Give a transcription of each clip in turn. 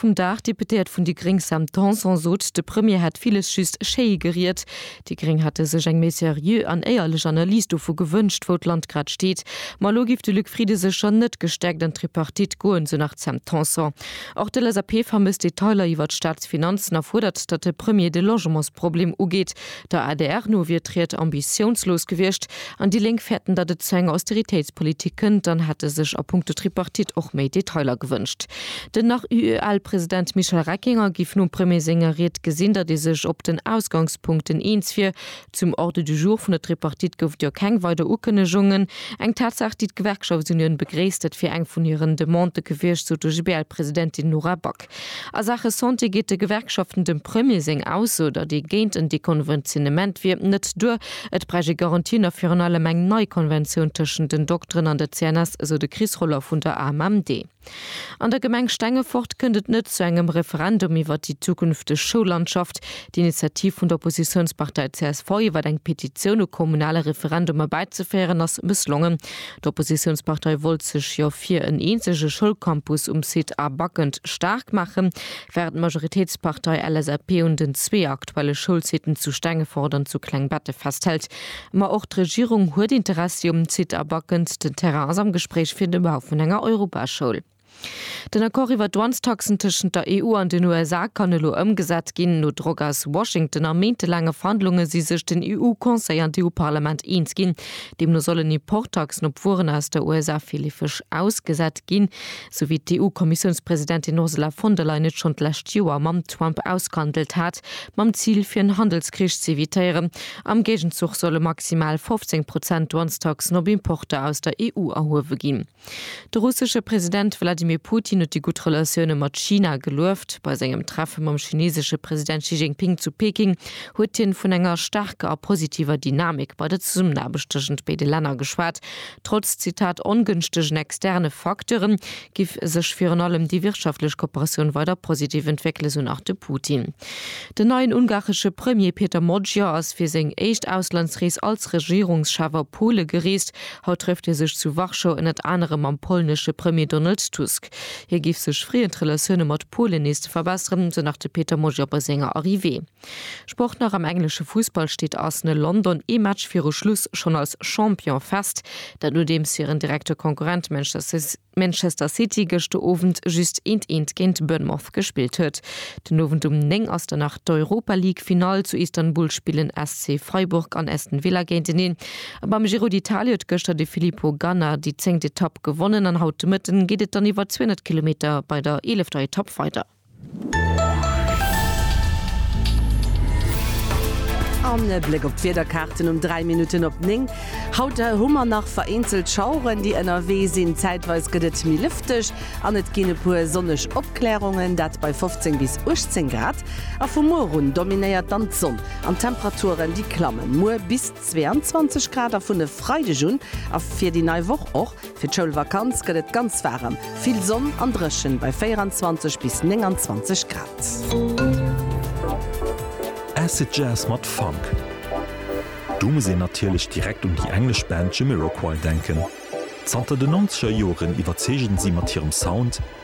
Vum Dag, D'Deputéiert vun déi gréng Sam Tanson sot, de Premier hätt villes just schéi geriet. Déi gréng hätte sech eng méi seriö an éierlech Analys dovu gewënscht, wou d'Land grad steet. Ma elo géif de Luc Frieden sécher net gestäerkt an d'Tripartite goen, esou nach d'Sam Tanson. Och d'LSAP vermësst Detailer iwwer d'Staatsfinanzen a fuerdert, datt de Premier de Logementsproblem ugeet. Der adr no wier d'Ried ambitiounslos gewiescht an déi Lénk fäerten, datt et zu enger Austeritéitspolitik kënnt an hätte sech a punkto Tripartite och méi Detailer gewënscht. Den nach UEL-President Michel Reckinger géif nom Premier senger Ried gesinn, datt ee sech op den Ausgangspunkten eens wier. Zum Ordre du jour vun der Tripartite gouf et jo keng weider Ukënnegungen. Eng Tatsaach, déi d'Gewerkschaftsunioun begréisst. Dat wier eng vun hiren Demandë gewiescht, sou d'OGBL-Presidentin Nora Back. A Saache Santé geet de Gewerkschaften dem Premier seng Ausso, datt ee géint en Dekonventionnement wier, net duer. Et bräicht ee Garantien a virun allem eng nei Konventioun tëschent den Dokteren an der CNS, esou de Chris Roller vun der AMMD. An der Gemeng Stengefort kënnt et net zu engem Referendum iwwer déi zukünfteg Schoullandschaft. D'Initiativ vun der Oppositiounspartei csv, iwwer eng Petitioun u kommunale Referendumer bäizeféieren, ass mësslongen. D'Oppositiounspartei wollt sech jo fir en eenzege Schoulcampus um Site A Backend staark maachen, wärend d'Majoritéitspartei LSAP un den zwee aktuelle Schoulsiten zu Stengefort an zu Klengbette festhält. Ma och d'Regierung huet Interessi um Site A Backend. Den Terrain ass am Gespréich fir de Bau vun enger Europaschoul. Den Accord iwwer d'Douanestaxen tëschent der EU an den USA kann elo ëmgesat ginn. No Drock aus Washington a méintelaange Verhandlunge si sech den EU-Conseil an d'EU-Parlament eens ginn. Deemno sollen Importtaxen op Wueren aus der USA virleefeg ausgesat ginn, sou wéi d'EU-Kommissiounspresidentin Ursula von der Leyen et schonn d'lescht Joer mam Trump ausgehandelt hat, mam Zil fir en Handelskrich ze evitéieren. Am Géigenzuch solle maximal 15 Prozent Douanestaxen op Importer aus der EU erhuewe ginn. De russesche President Wladimir Putin huet déi gutt Relatioune mat China gelueft. Bei sengem Treffe mam chinesesche President Xi Jinping zu Peking huet hien vun enger staarker a positiver Dynamik bei der Zesummenaarbecht tëschent béide Länner geschwat. Trotz, Zitat, ongënschtegen externe Facteure giff sech virun allem déi wirtschaftlech Kooperatioun weider positiv entwéckelen, esou nach de Putin. Den neien ungaresche Premier Peter Magyar ass fir seng éischt Auslandsrees als Regierungschef a Pole gereest. Haut trëfft hie sech zu Warschau ënnert anerem mam polnesche Premier Donald Tusk. Hie géif sech freeën, d'Relatioune mat Polen nees ze verbesseren, sou nach de Peter Mojor bei senger Arrivée. Sport nach, Am englesche Fussball steet Arsenal London ee Match viru Schluss schonn als Champion fest, dat nodeems hiren direkte Konkurrent Manchester City, Manchester City gëschter Owend just eent eent géint Bournemouth gespillt huet. Den Owend um 9 ass dann nach d'Europa League Finall, zu Istanbul spillen SC Freiburg an Aston Villa géinteneen. A beim Giro d'Italia huet gëschter de Filippo Ganna déi zéngt Etapp gewonnen an haut de Mëtten geet et dann iwwer 200 Kilometer bei der eelefter Etapp weider. An e Bléck op d'Wiederkaarten um 3 Minutten op 9. Haut hu mer nach vereenzelt Schaueren, déi ënnerwee sinn. Zäitweis gëtt et méi lëfteg an et ginn e puer sonneg Opklärungen, dat bei 15 bis 18 Grad. A vu muer un dominéiert dann d'Sonn an d'Temperaturen, déi klammen muer bis. 22 Grad a vun e Freideg un a fir déi nei Woch och. Fir d'Schoulvakanz gëtt et ganz waarem, vill Sonn an dréchen bei 24 bis 29 Grad. Acid Jazz mat Funk, do muss een natierlech direkt un déi englesch Band Jamiroquai denken. Zanter den Nonzeger Joren iwwerzeegen si mat hirem Sound,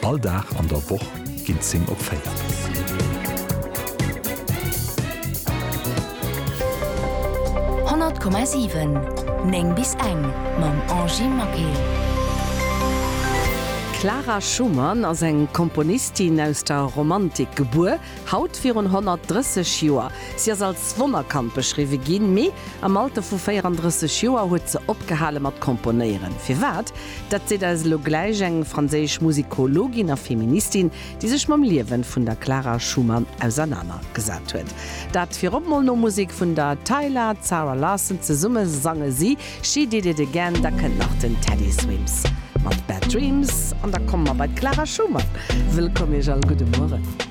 All Dag an der Woch ginn 10 op 4. D'Clara Schumann ass eng Komponistin aus der Romantik gebuer, Haut virun 130 Joer. Si ass als Wonnerkand beschriwwe ginn, mee am Alter vu 34 Joer huet se opgehale mat komponéieren. Firwat? Dat seet eis elo gläich eng franséisch Musikologin a Feministin, déi sech mam Liewen vun der Clara Schumann ausernaner gesat huet. Dat virop mol no Musek vun der Tyla, Zara Larsson. Zesumme sange si She Did It Again. Da kënnt nach den Teddy Swims mat Bad Dreams an da komme mer bei d'Clara Schumann. Wëllkomm Iech all. Gudde Mueren.